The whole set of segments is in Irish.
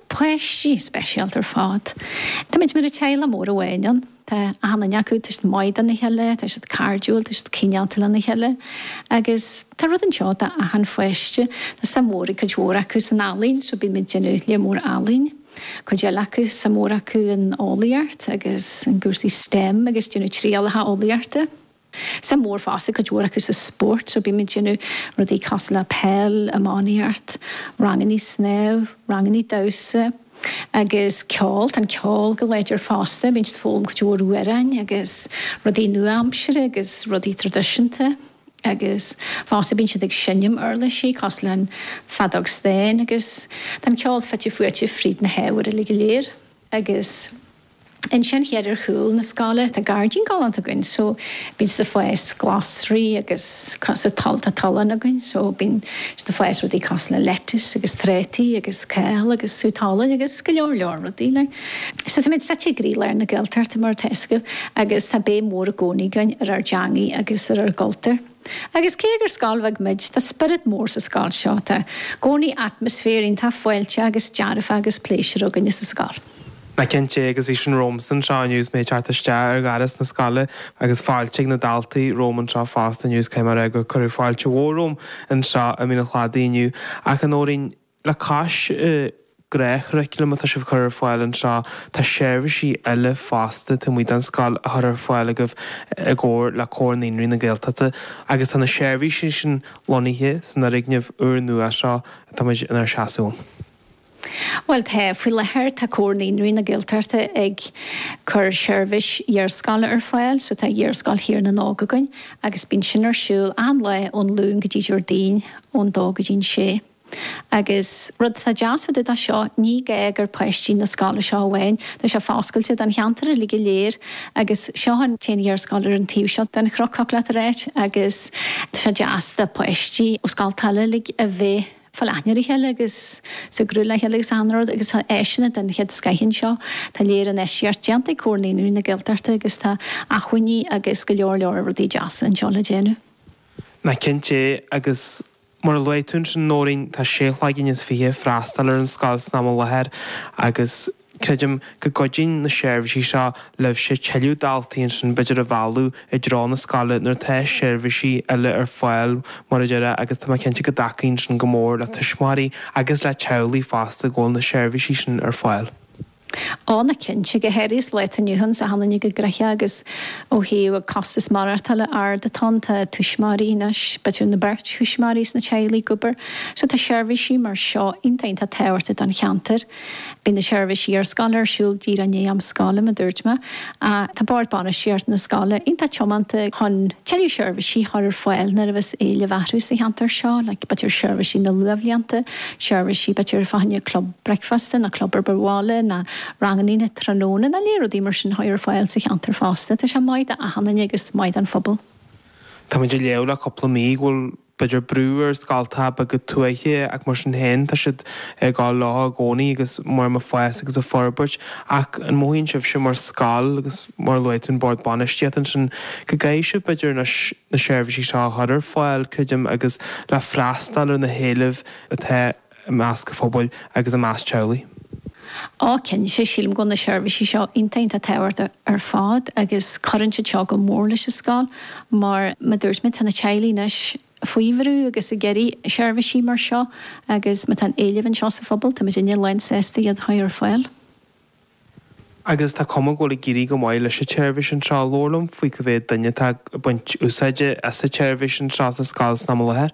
páistí speisialta ar fad. Táimid mar teaghlach mór amháin ann. Tá achan duine acu, tá siad maith dona chéile, tá siad cairdiúil, tá siad cineálta lena chéile agus tá rud anseo do achan pháiste. Tá suim mhór ag cuid mhór acu san ealaín so bím ag déanamh lear mór ealaín. Cuid eile acu, suim mhór acu in eolaíocht agus in gcúrsaí stem agus ag déanamh trialacha eolaíochta. Suim mhór fosta ag cuid mhór acu sa spórt so bímid ag déanamh rudaí cosúil le peil, iománaíocht, rangannaí snámh, rangannaí damhsa agus ceol, tá an ceol go láidir fosta, bíonn siad ag foghlaim cuid mhór amhráin agus rudaí nua-aimseartha agus rudaí traidisiúnta agus fosta bíonn siad ag seinm uirlisí cosúil le an feadóg stáin agus tá an ceol fite fuaite fríd na hábhair uilig go léir agus Ansin thiar ar chúl na scoile tá gairdín galánta againn so bíonn siad ag fás glasraí agus sa toll tá tolláin againn so bíonn siad ag fás rudaí cosúil le lettuce agus trátaí agus kale agus sú talún agus go leor leor rudaí eile. So táimid suite i gcroílár na Gaeltachta mar atá fhios agaibh agus tá béim mhór i gcónaí againn ar ár dteangaidh agus ar ár gcultúr. Agus cé gur scoil bheag muid tá spiorad mór sa scoil seo, tá i gcónaí atmaisféar iontach fáilteach agus dearfach agus pléisiúr againn sa scoil. Nach cinnte é, agus bhí sin romhamsa anseo inniu is mé ag teacht isteach ar gheata na scoile agus fáilte ag na daltaí romham anseo fosta inniu is caithfidh mé a rá gur cuireadh fáilte mhór romham anseo i Mín an Chladaigh inniu. Ach a Nóirín, le cois gach curriculum atá sibh ag cur ar fáil anseo, tá seirbhísí eile fosta taobh amuigh den scoil á chur ar fáil agaibh i gcomhar le Comhar Naíonraí na Gaeltachta agus tá na seirbhísí sin lonnaithe san fhoirgneamh úr nua seo atá muid inár seasamh ann. Bhuel, tá. Faoi láthair, tá Comhar Naíonraí na Gaeltachta ag cur seirbhís iarscoile ar fáil, so tá Iarscoil Thír na nÓg againn agus bíonn sin ar siúl achan lá ón Luan go dtí Déardaoin ón dó go dtí an sé. Agus rud atá deas fá dtaobh dó seo, ní gá gur páistí na scoile seo amháin, tá sé foscailte don cheantar uilig go léir agus seo an t-aon iarscoil ar an taobh seo den chnoc, thig leat a ráit, agus tá sé deas do pháistí ó scoltacha eile uilig a bheith. Ag fáil aithne ar a chéile agus ag súgradh le chéile agus ar ndóigh agus tá áiseanna den chéad scoith anseo. Tá lear infheistíocht déanta ag Comhar Naíonraí na Gaeltachta agus tá acmhainní agus go leor leor rudaí deasa anseo le déanamh. Nach cinnte é agus mar a luaigh tú ansin Nóirín, tá seisear cloigne is fiche ag freastal ar an scoil san am i láthair agus Creidim go gcuidíonn na seirbhísí seo libhse tuilleadh daltaí ansin b'fhéidir a mhealladh i dtreo na scoile nuair atá seirbhísí eile ar fáil mar a déarfá agus tá mé cinnte go dtacaíonn sin go mór le tuismitheoirí agus le teaghlaigh fosta go bhfuil na seirbhísí sin ar fáil. Ó nach cinnte go háirithe sa lá atá inniu ann sa chaoi ina gcruth agus ó thaobh an costas maireachtála ard atá ann tá tuismitheoirí anois, b'fhéidir an bheirt thuismitheoirí sa teaghlach ag obair so tá seirbhísí mar seo iontach iontach tábhachtach don cheantar. Bíonn na seirbhísí iarscoile ar siúl díreach i ndiaidh am scoile, mar a dúirt mé. Tá Bord Bainistíochta na Scoile iontach tiomanta chun tuilleadh seirbhísí a chur ar fáil nuair a bheas éileamh orthu sa cheantar seo, like b'fhéidir ar sheirbhísí na luathbhlianta, seirbhísí b'fhéidir fá choinne club bricfeasta nó club obair bhaile ná rangannaí na tráthnóna ná le rudaí mar sin a chur ar fáil sa cheantar fosta. Tá sé maith do dhaoine agus maith don phobal. Táimid ag léamh le cúpla mí go bhfuil b'fhéidir, brú ar scoilte beaga tuaithe, ach mar sin féin, tá siad ann tá gá leo i gcónaí agus muid ag fás agus ag forbairt. Ach an mothaíonn sibhse mar scoil, agus mar a luaigh tú an bord bainistíocht ansin, go gcaithfidh sibh, b'fhéidir, anois na seirbhísí seo a chur ar fáil, creidim, agus le freastal ar na héilimh atá i measc an phobail agus i measc teaghlaigh. Tá cinnte, sílim, go bhfuil na seirbhísí seo iontach tábhachtach ar fad agus cuireann siad seo go mór leis an scoil mar, mar a dúirt mé, tá na teaghlaigh anois faoi bhrú agus ag iarraidh seirbhísí mar seo agus má tá an éileamh anseo sa phobal, tá muidinne lánsásta iad a chur ar fáil. Agus tá cuma go bhfuil ag éirí go maith leis an tseirbhís anseo. Labhair liom faoi cé mhéad duine atá ag baint úsáide as an tseirbhís anseo sa scoil san am i láthair.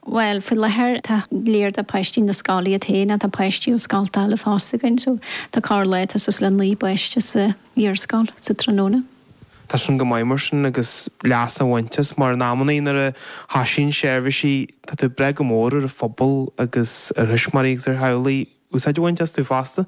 Bhuel, faoi láthair tá go leor de pháistí na scoile iad féin, ach tá páistí ó scoilte eile fosta againn, so tá corrlá tá suas le naoi bpáiste san iarscoil sa tráthnóna. Tá sin go maith mar sin agus leas á bhaint as mar in amannaí nuair a thoisíonn seirbhísí tá tú ag brath go mór ar an phobal agus ar thuismitheoirí agus ar theaghlaigh, úsáid a bhaint astu fosta.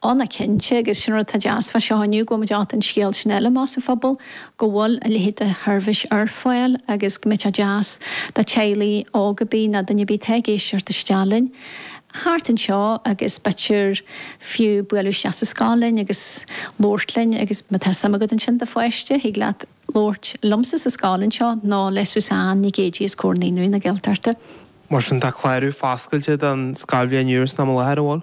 Ó, tá cinnte, agus sin rud atá deas fá seo inniu, go bhfuil muid ábalta an scéal sin a ligean amach sa phobal, go bhfuil a leithéid de sheirbhís ar fáil agus go mbeadh sé deas do teaghlaigh óga ar bith ná duine ar bith atá ag éisteacht isteach linn thart anseo agus b'fhéidir fiú bualadh isteach sa scoil linn agus labhairt linn agus má tá suim agat ann do do pháiste, thig leat. labhairt liomsa sa scoil anseo nó le Suzanne Nic Géidigh as Comhar Naíonraí na Gaeltachta. Mar sin, tá clárú foscailte don scoilbhliain úr san am i láthair an bhfuil.